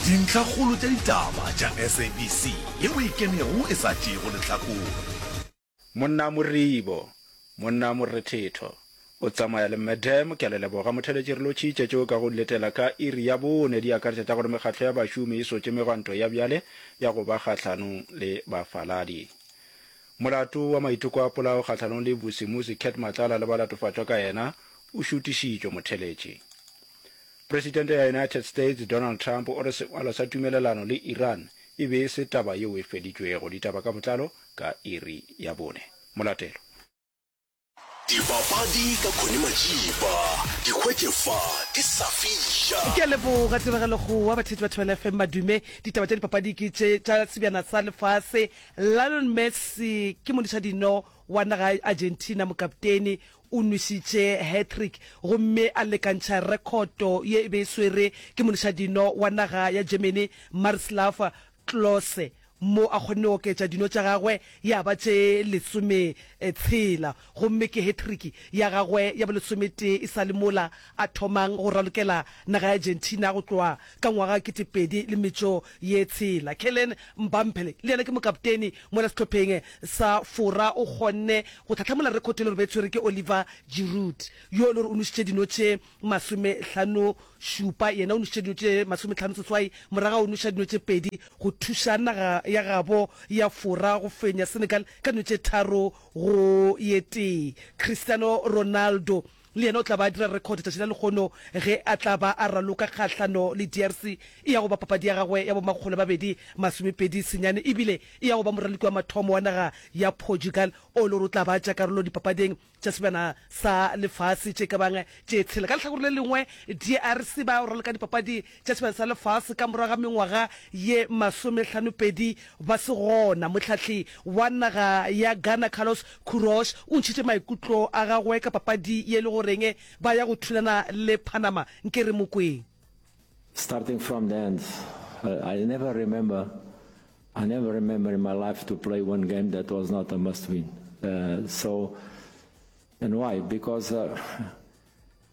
Dintlhakgolo tša ditaba tša SABC yeo e kenego e sa tšeego lehlakore. Monna Moribo, Monna Morethetho o tsamaya le Madam ke a le leboga motheletši re lo tšhitše tšeo ka go di letela ka iri ya bone di akaretša tša gore mekgatlo ya bašomi e sotše megwanto ya bjale ya go ba kgahlanong le bafaladi molato wa maiteko a polao kgahlanong le Vusimuzi Cat Matlala le ba latofatšwa ka yena o šutišitšwe motheletši Presidente ya United States, Donald Trump, o re sengwalo sa tumelelano le Iran e be e se taba yeo e feditšwego. Ditaba ka botlalo ka iri ya bone. Molatelo. Dipapadi ka Connie Majiba di hwetše fa di sa fiša. Ke a leboga Tiragalo go wa batheetši ba Thobela FM Madume. Ditaba tša dipapadi ke tše tša sebjana sa lefase. Lionel Messi ke modiša dino wa naga ya Argentina, mokapteni O nwešitše hat-trick gomme a lekantšha rekhoto ye e be e swerwe ke monišadino wa naga ya Germany Marislav Klose mo a kgonne go oketša dino tša gagwe ya ba tše lesometshela gomme ke hat-trick ya gagwe ya bolesometee e sa le mola a thomang go ralokela naga ya Argentina go tloga ka ngwaga kete pedi le metšo ye tshela. Kylian Mbampele le yena ke mokapteni mola sehlopheng sa Fora o kgonne go tlhahlamola rekhota e le gore be tshwere ke Oliver Giroud yo e le gore o nošitše dino tše masomehlano šupa. Yena o nošitše dino tše masomehlano seswai morago ga go noša dino tše pedi go thuša naga ya gabo ya Fora go fenya Senegal ka dino tše tharo go ye tee. Cristiano Ronaldo Le yena o tla ba a dira rekhode tšatši la lekgono ge a tla ba a raloka kgahlano le DRC. E ya go ba papadi ya gagwe ya bomakgolo a mabedi masomepedi senyane e bile e ya go ba moraloki wa mathomo wa naga ya Portugal o e le gore o tla ba a tšea karolo dipapading tša sebjana sa lefase tše ka bang tše tshela. Ka lehlakore le lengwe, DRC ba raloka dipapadi tša sebjana sa lefase ka morago ga mengwaga ye masomehlanopedi ba se gona, mohlahli wa naga ya Ghana Carlos Queiroz o ntšhitše maikutlo a gagwe ka papadi ye le goreng ba ya go thulana le Panama. Nke re mo kweng. Starting from the end, I never remember, I never remember in my life to play one game that was not a must win. So, and why? Because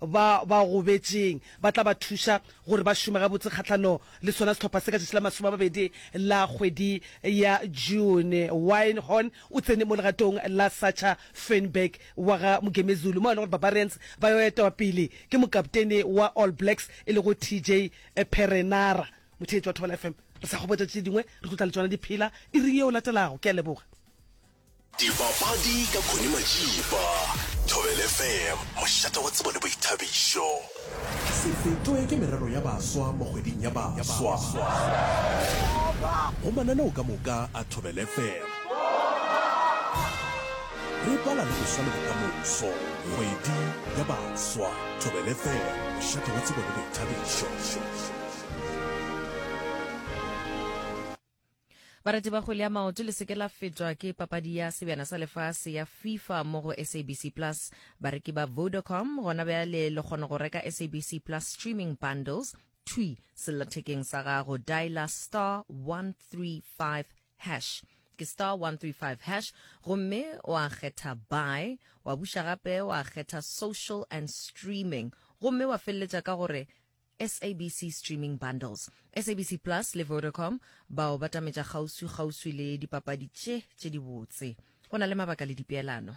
ba ba gobetšeng ba tla ba thuša gore ba šome gabotse kgahlano le sona sehlopha se ka tšatši la masome a mabedi la kgwedi ya June. Wynhorn o tsene mo legatong la Sacha Feinberg wa ga Mugemezulu mo e le gore Barbarians ba yo etwa pele ke mokaptene wa All Blacks e lego TJ Perenara. Motheetši wa Thobela FM, re sa kgobotša tše dingwe, re tlo tla le tšona di phela iring ye o latelago. Ke a leboga. Dipapadi ka Connie Majiba, Thobela FM, mošate wa tsebo le boithabišo. Se fetwe ke merero ya baswa mo kgweding ya baswa go mananeo ka moka a Thobela FM. Re bala le boswa le bokamoso, kgwedi ya baswa, Thobela FM, mošate wa tsebo le boithabišo. Barati ba kgwele ya maoto le seke la fetwa ke papadi ya sebjana sa lefase ya FIFA mo go SABC Plus. Bareki ba Vodacom gona bjale le kgona go reka SABC Plus streaming bundles thwi sellathekeng sa gago. Diala star 135 hash ke star 135 hash gomme wa kgetha buy wa buša gape wa kgetha social and streaming gomme wa feleletša ka gore SABC Streaming Bundles, SABC Plus le Vodacom ba o batametša kgauswikgauswi le dipapadi tše tše dibotse. Go na le mabaka le dipeelano.